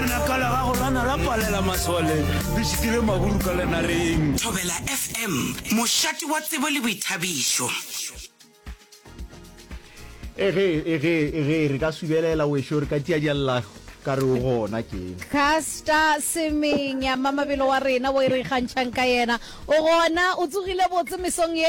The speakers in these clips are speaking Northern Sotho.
Lenaka la gago la na la palela masole le šitile maburu ka lenareng. Thobela FM, mošate wa tsebo le boithabišo. Ege, ege, ege, re ka subelela wešo, re ka tšea diallago ka re o gona keng. Casta Semenya, mmamabelo wa rena wo e re ikgantšhang ka yena. O gona, o tsogile botse mesong ye?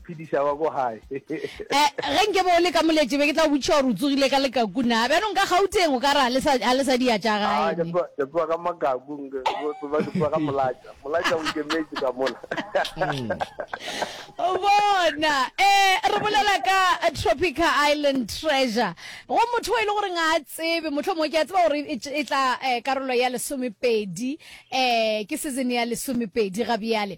phediša ba ko gae eh, ge nke bo le ka moletše be ke tla botšiša gore o tsogile ka lekaku na bjanong ka gauteng o ka re ga le sa dia tša gae ke tsoga ka makaku ba ke tsoga ka molatša molatša o nkemetse ka mola bona um re bolela ka tropica island treasure go motho e le goreng a tsebe motlho mongwe ke a tseba gore e, e tla um karolo ya lesomepedi um ke season ya lesomepedi ga bjale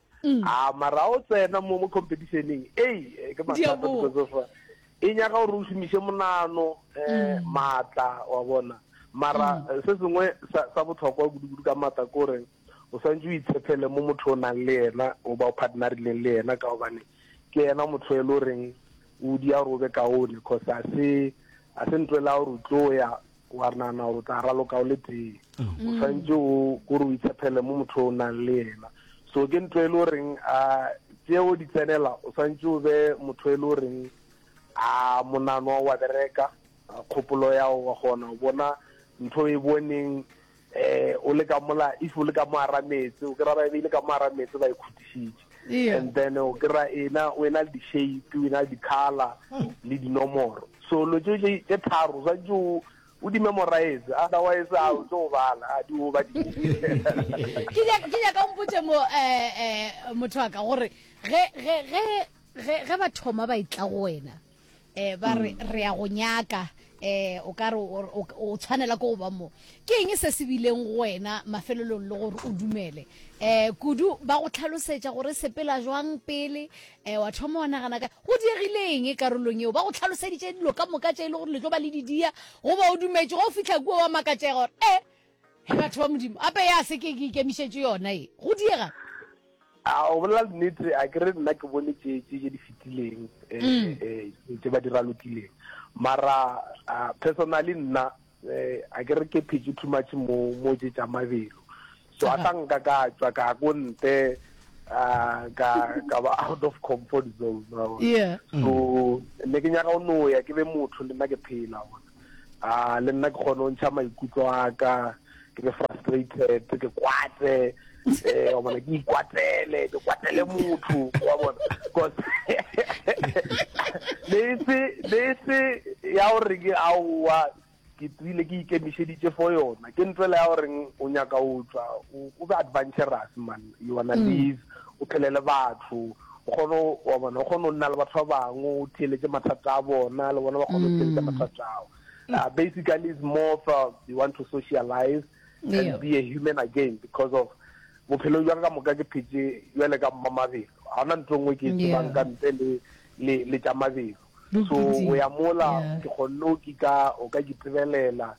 mm. a ah, mara o tsena mo mo competitioneng ei eh, ke mathata because of uh, e nyaga gore o šomiše monano um maatla wa bona mara mm. eh, se sengwe sa botlhokwa kudu-kudu ka maatla ke gore o swantse o itshepele mo motho o nang le yena o ba o partnerileng le yena ka gobane ke yena motho e le goreng o dia gore o be kaone cause a se a se ntwela gore o tlo ya Wa nana gore o tla raloka o le tee. O swantše o gore o itshepele mo motho o nang le yena. So ke ntho e le goreng a tseo di tsenela o swantše o be motho e le goreng a monano wa bereka kgopolo ya wa gona o bona ntho e boneng eh o le ka mola if o le ka mo ara metse o kry-a ba ebile ka mo ara metse ba e khutišitše Eya. and then o kry-a ena o ena le di-shape o ena le di-color le dinomoro so lo tse tše tše tharo o swantse o o di memorize otherwise a o tlo go bala a di o ba di ke nya- ke nyaka o mpotše mo eh, eh, motho wa ka gore ge ge ge ge ge ba thoma ba itla go wena eh ba re mm. re ya go nyaka eh o ka re o tshwanela go ba mo ke eng se se bileng go wena mafelelong le gore o dumele eh kudu ba go tlhalosetsa gore sepela jwang pele eh wa thoma wa nagana ka go diegile eng e karolong eo ba go tlhaloseditse dilo ka moka tse e le gore le tlo ba le didia go ba o dumetse go fitlha kuo wa makatsega gore eh He batho ba Modimo, gape ya se ke ke ikemišetše yona ye, go diega. A o bolela nnete, a ke re nna ke bone tše tše tše di fetileng, eh, mm. eh, tše ba di ralokileng. Mara uh, personally nna eh, a ke re ke phetše too much mo mo tše tša mabelo. So a tla nka ka tšwa ka ko nte uh, ka ka ba out of comfort zone. Yeah. So ne ke nyaka o no ya ke be motho le nna ke phela. a le nna ke kgone go ntšha maikutlo a ka ke be frustrated ke kwate eh wa bona ke ikwatele ke kwatele motho wa bona because le se le se ya gore ke a wa ke tsile ke ikemišeditše for yona ke ntwela ya gore o nyaka o tswa o be adventurous man you wanna mm. live o phele le batho O kgona, wa bona, o kgona go nna le batho ba bangwe, o theeletše mathata a bona, le bona ba kgona go theeletša mm. mathata ao. Uh, basically, it's more of uh, you want to socialize yeah. and be a human again because of bophelo jwa ka moka ke phetse jale ka mma mabelo ga ona ntho e nngwe ke e tsebang ka ntle le le le tša mabelo so o ya mola ke kgonne o kika o ka ke tsebelela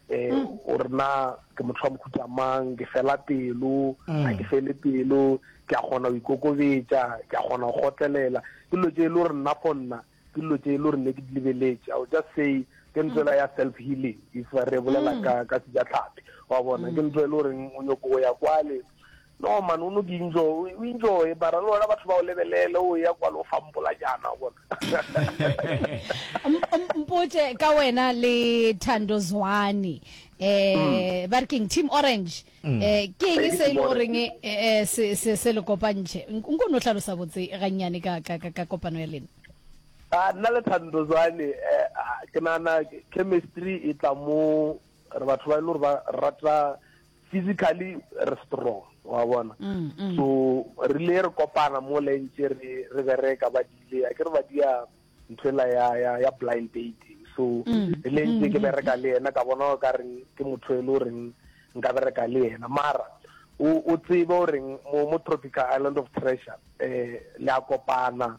um o re na ke motho wa mohuta mang ke fela pelo ga ke fele pelo ke a kgona go ikokobetša ke a kgona go gotlelela ke dilo tse e le gore nna for nna ke dilo tse e le gore ne ke di lebeletse i will just say ke ntlo ela ya self healing if re bolela ka ka sejatlhapi wa bona ke ntlo e le goreng o nyoko go ya kwale No man o no di enjoy, o enjoy bara le wena batho ba o lebelele o ya kwalo o fa mpolajana o bona. Mpotše ka wena le Thando Zwane eh ba re keng Team Orange eh ke eng se ile goreng eh se se se le kopantše nko no hlalosa botse gannyane ka ka ka kopano ya lena a nna le Thando Zwane eh, ke nana chemistry e tla mo re batho ba ile gore ba rata physically re strong wa bona so re ile re kopana mo le ntse re re bereka ba dile a ke re ba dia nthwela ya ya ya blind dating so re le ntse ke bereka le yena ka bona ka re ke motho e lo reng nka bereka le yena mara o o tsebe o reng mo mo tropical island of treasure eh la kopana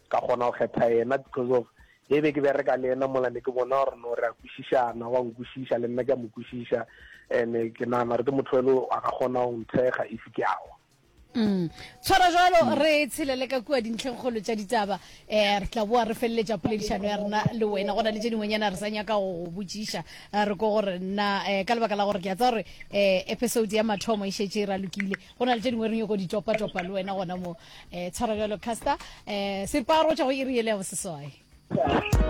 Ka kgona go kgetha yena because of ge be ke bereka le yena mola ne ke bona gore no re a kwešišana wa nkwešiša le nna ke a mo kwešiša and ke nagana gore ke motho ele a ka kgona go nthekga if ke awa mm. tshwara jalo mm. re tshelele ka kua dintlhengkgolo tša ditaba um re tla boa re feleletša poledišano ya rena le wena go na le tše dingwenyana re sa nyaka go go botšiša eh, re ko gore nna um ka lebaka la gore ke a tsa gore um episode ya mathomo e šetše e ralokile go na le tše dingwe re nyoko ditopatopa le wena gona mo um tshwara bjalo caster um separo tša go iri e le ya boseswai